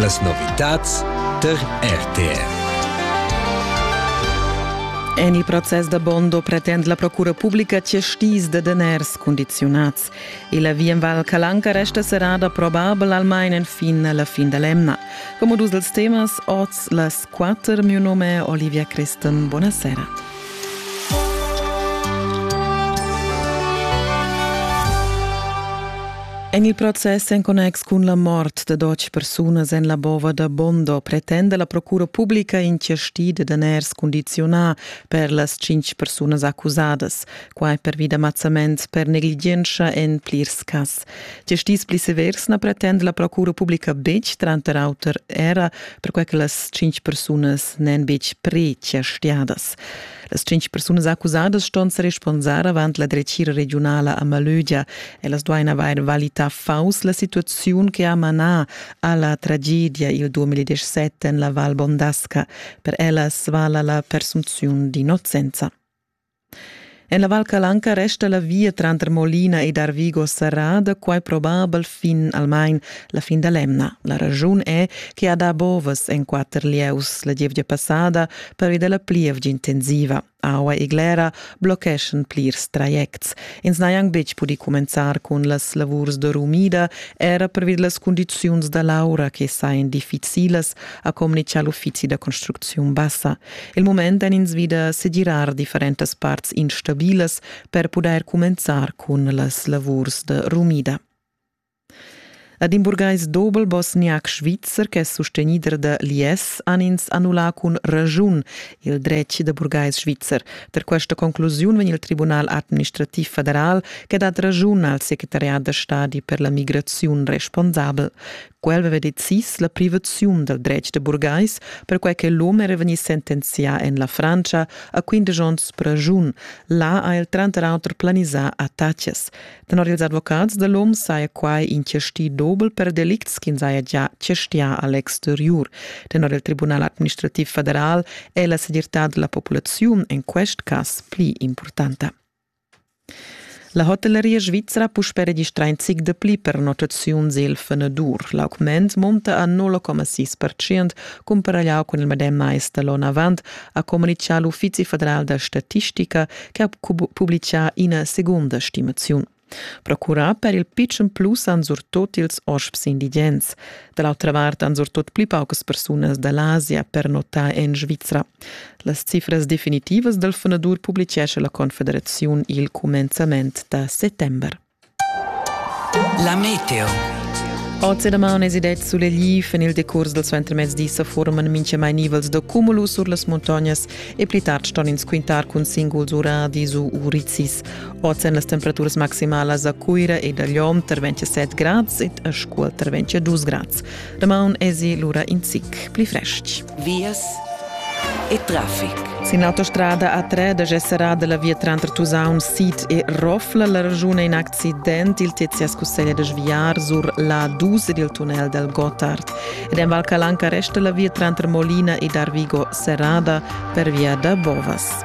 Las novitads tar RTR. En il process da Bondo pretend la procura publica cestis da daners condiziunads e la via en Val Calanca resta serrada probabel almain enfin la fin da l'emna. Come dus dels temas, oz las quatter, mio nome è Olivia Christen. Buonasera. En il process en connex cun la mort da dotg persunas en la bova da Bondo pretenda la procura publica in chasti da daners condiziunà per las tschintg persunas accusadas, quai pervi da mazzament per negligientscha en plirs cas. Giastis pli severs na pretenda la procura publica betg, tranter auter era perquai che las tschintg persunas n'èn betg pre-chastiadas. Las tschintg persunas accusadas ston sa responsar avant la dretgira regiunala a Malögia. Ellas duain avair valità fauss la situaziun che ha manà a la tragedia il 2017 en la Val Bondasca. Per ellas vala la presunziun d'innocenza. En la Val Calanca resta la via tranter Molina ed Arvigo serrada, quai probabel fin almain la fin da l'emna. La raschun è che ha dà bovas en quatter lieus la gievgia passada pervi da la plievgia intensiva. Aua e glera blocheschan plirs trajects. Ins n'ha anc betg pudì cumenzar cun las lavurs da rumida, era pervi da las cundiziuns da l'aura che sajan difficilas, ha communitgà l'uffizi da construcziun bassa. Il mument èn ins vi da segirar differentas parts instabilas per pudair cumenzar cun las lavurs da rumida. Ad in burgais dobel bosniac svizzer ch'è sustenider da l'IS han ins annullà cun raschun il dretg da burgais svizzer. Per questa conclusiun vegn il Tribunal administrativ federal che dat raschun al secretariat da stadi per la migraziun responsabel. Quel veva decis la privaziun dal dretg da burgais, perquai che l'um era vegnì sentenzià en la Frantscha a quindesch onns praschun. Là ha el tranter auter planisà attacas. Tenor ils advocats da l'um saja quai in chastì dobel per delicts ch'ins haja già chastià a l'exteriur. Tenor il Tribunal administrativ federal è la segirtad da la populaziun en quest cas pli impurtanta. La hotelleria svizra puspè registrà in zic dapli per notaziuns il fenadur. L'augment munta a 0,6 percent cumparagliau cun il medem mais da l'onn avant, ha communitgà l'Uffizi federal da statistica che ha publicà ina segunda stimaziun. Procurà per il pitschen plus han surtot ils hosps indigens. Da l'autra vart han surtot pli paucas persunas da l'Asia per notar en Svizra. Las cifras definitivas dal funadur publitgescha la Confederaziun il cumenzament da settember. La meteo. Oz e daman es idet sulegli fin il decurs dal suentermezdi sa forman minchamai nivels da cumulu sur las muntognas e pli tard ston ins quintar cun singuls uradis u urizis. Oz èn las temperaturas maximalas a Cuira ed a Lom tar 27 grads ed a Scuol tar 22 grads. Damaun esi lura in zic pli frestg. Vias e traffic. Sin l'autostrada A3 da Gessera da la via tranter Tusaun Sid e Rofla la ragiun è in accident. Il Tizias cusseglia da sviar sur l'A2 ed il tunnel del Gotthard. Ed en Val Calanca resta la via tranter Molina ed Arvigo serrada per via da Bovas.